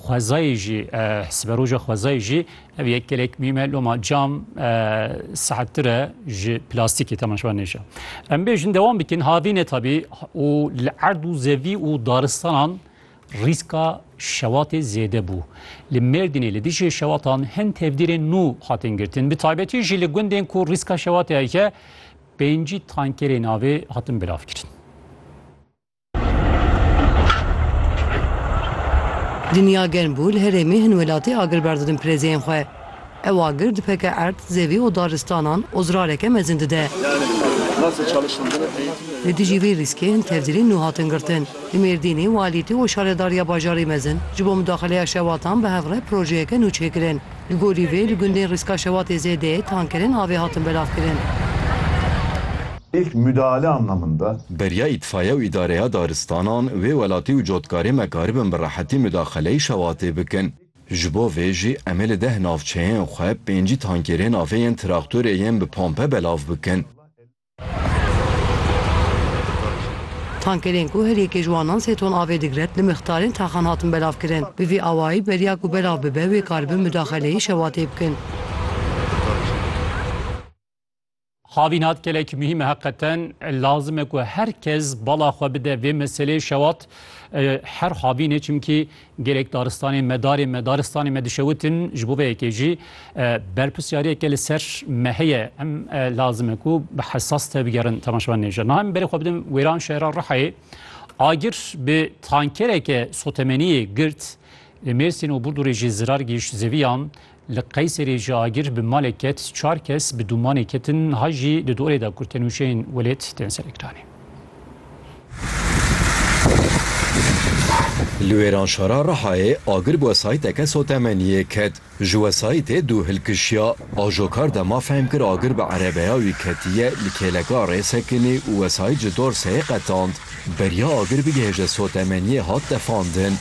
Xwezayê jî siberoja xwezayê jî ev yek gelek mîm e loma cam sahttir e ji plastîkê tema şivan nêşe. Em bêjin dewan bikin havîne tabî û li erd û zevî û daristanan rîska şewatê zêde bû. Li Mêrdînê li dijî şewatan hin tevdîrên nû hatin girtin. Bi taybetî jî li gundên ku rîska şewatê heke pêncî tankerên avê hatin bilavkirin. Dinya germ bû li herêmê hin welatî agir berdidin pirêzeyên xwe. Ew agir dipeke erd, zevî û daristanan û zirareke mezin dide. Li dijî vê rîskê hin tevdîrên nû hatin girtin. Li Mêrdînê walîtî û şaredariya bajarê mezin ji bo mudaxileya şewatan bi hev re projeyeke nû çêkirin. Li gorî vê li gundên Rîska Şewatê ZD'ê tankerên avê hatin belavkirin. Îlk mudahale anlamında. Beriya Îtfaiye û Îdareya Daristanan wê welatî û cotkarê me karibin bi rehetî mudaxeleyî Şewatê bikin. Ji bo vê jî em ê li deh navçeyên xwe pêncî tankerên avê yên traktorê yên bi pompe belav bikin. Tankerên ku her yekê ji wan nan sê ton avê digre li mixtarên taxan hatin belavkirin. Bi vî awayî beriya ku belav bibe wê karibin mudaxeleyê şewatê bikin. Havînat gelek muhîm e heqeten lazim e ku her kes bala xwe bide vê meseleyê şewat her havînê çimkî Gelek daristanên me, darên me, daristanên me dişewitin, ji bo vê yekê jî berpirsyariyeke li ser me heye. Em lazim e ku bi hesas tevbigerin temaşevan nê jin. Niha min berê xwe bidim wêran şehra Rihayê. Agir bi tankereke sotemeniyê girt. Li Mêrsîn û Burdurê jî zirar gihîşt zeviyan. Li Qeyserê ji agir bi malê ket çar kes bi dûmanê ketin niha jî di dorê de ku tenûşeyên welêt tên serekranê. Li Wêranşara Rihayê agir bi wesayîteke sotemeniyê ket. Ji wesayîtê dû hilkişiya. Ajokar dema fehm kir agir bi erebeya wî ketiye li kêleka Rêsekinê û wesayît ji dorseyê qetand. Beriya agir bigihêje sotemeniyê hat tefandin.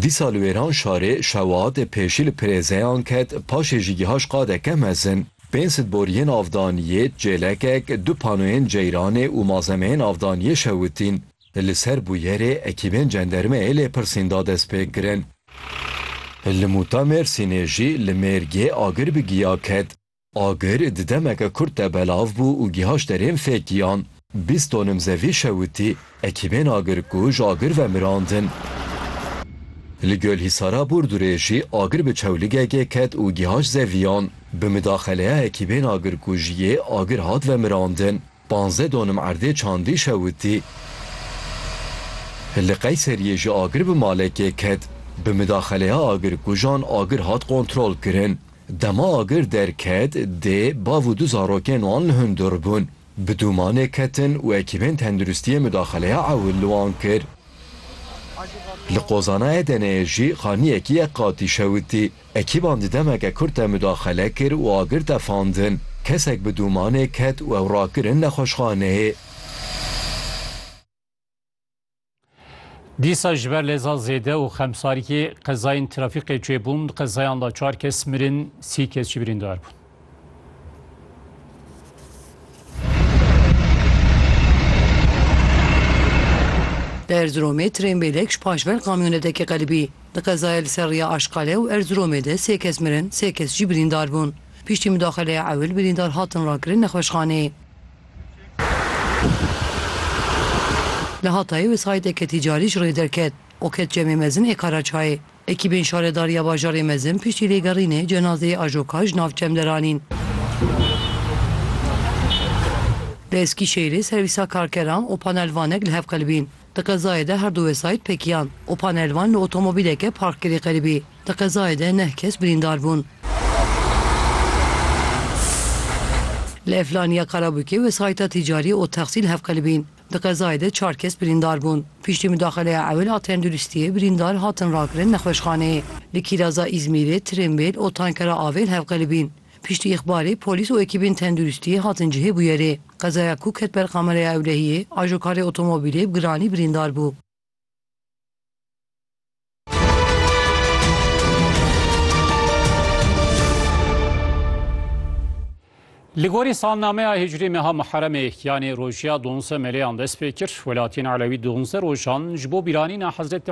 Dîsa li wêran şarê şewat pêşî li pirêzeyan ket paşê jî giha ji qade ke mezin. Pênc sed boriyên avdaniyê, çêlekek, du panoyên ceyranê û mazemeyên avdaniyê şewitîn. Li ser bûyerê ekîbên cendermeyê lêpirsîn da dest pê kirin. Li Mûta Mêrsînê jî li mêrgê agir bi giya ket. Agir di demeke kurt de belav bû û gihaşt derên fekiyan. Bîst tonim zevî şewitî. Ekîbên agirkuj agir vemirandin. Li Gölhisara Burdurê jî agir bi çewligekê ket û gihaşt zeviyan. Bi midaxeleya ekîbên agirkujiyê agir hat vemirandin. Panzdeh donim erdê çandî şewitî. Li Qeyseriyê jî agir bi malekê ket. Bi midaxeleya agirkujan agir hat kontrolkirin. Dema agir derket, dê bav û du zarokên wan hundir bûn. Bi dûmanê ketin û ekîbên tenduristiyê mudaxeleya ewil li wan kir. Li qozana Edeneyê jî xaniyekî yek qatî şewitî. Ekîban di demeke kurt de mudaxele kir û agir tefandin. Kesek bi dûmanê ket û ew rakirin nexweşxaneyê. Dîsa ji ber lêza zêde û xemsarîkê qezayên trafîkê çêbûn, di qezayan de çar kes mirin, sî kes jî birîndar bûn. Di Erziromê trên bêlek ji paş ver kamyonetekê qelibî. Di qezaya li ser rêya Aşqale û Erziromê de sê kes mirin, sê kes jî birîndar bûn. Piştî mudaxeleya ewil birîndar hatin rakirin nexweşxaneyê. Li Hatayê wê sayîteke tîcarî ji rê derket û ket cemê mezin ê Karaçayê. Ekîbên Şaredariya Bajarê Mezin piştî lêgerînê cenazeyê Ajoka ji nav cem deranîn. Li Eskîşehîrê servîsa karkeran û panelvanek li hev qelibîn. Di qezayê de herdu wesayît pekiyan û panelvan li otomobîleke parkirî qelibî. Di qezayê de neh kes birîndar bûn. Li Eflaniya Karabûkê wesayîta tîcarî Otexsîl hevqelibîn. Di qezayê de çar kes birîndar bûn. Piştî mudaxeleya ewil a tenduristiyê birîndar hatin rakirin nexweşxaneyê. Li Kîraza Îzmîrê tirênbêl û tankera avêl hevqelibîn. Piştî îxbarê polîs û ekîbên tenduristiyê hatin cihê bûyerê. Qezaya ku ket ber kameraya ewlehiyê, ajokarê otomobîlê bi giranî birîndar bû. Li gorî salnameya hicrî meha Muheremê yanê rojiya donze meleyan dest pê kir. Welatiyên Elewî donze rojan ji bo bîranîna Hezretî